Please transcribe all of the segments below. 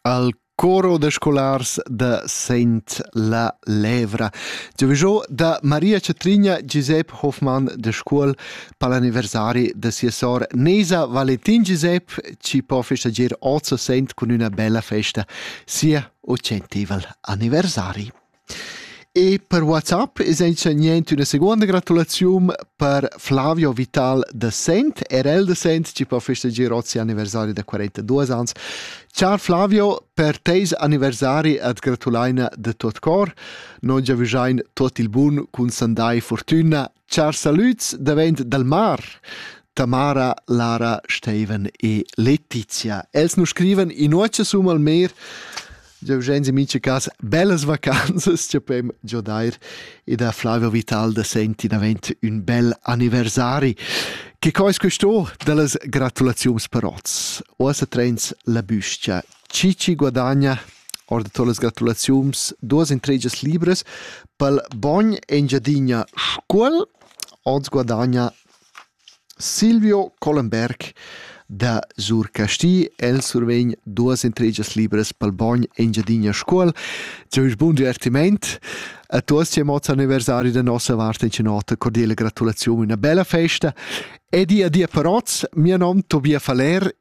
Al coro da scolars da Sent la Levra. Giovijò da Maria Cetrigna Giusep Hoffmann de Scuol per l'anniversari de sia sor Nesa Valentin Giusep ci può festeggiare 800 con una bella festa sia 800 anniversari. E per WhatsApp es auncha niente üna seguonda gratulaziun per Flavio Vital da Sent, RL da Sent, chi po festeggier hoz sia anniversari da 42 ans. Char Flavio, per teis anniversari at gratulaina da tuot cor. Noi giavüschain tuot il bun cun sandai fortüna Chars salüds davent dal mar. Tamara, Lara, Steivan e Letizia. Els nu scrivan inuocha sum al mer Eugenzi mincha cas bellas vacanzas cha pem giodair e da Flavio Vitalda senti davent ün bel anniversari. Che co es questo da las gratulaziuns per oz? Oasa trens la büscha Chi chi guadagna or da totas las gratulaziuns duos intregias libras pel Bogn Engiadina Scuol ons guadagna Silvio Collenberg da Sur Casti. El survegn duas intregias libras pel Bogn Engiadina Scuol. Giavisch bun divertiment a tuos chi amots anniversari da nossa vart in cinota cordiale gratulaziun, una bella festa e di adia per oz, mio nom Tobia Faller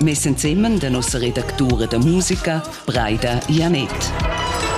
Mes ensemen da nossa redactura da musica, Breida Janett.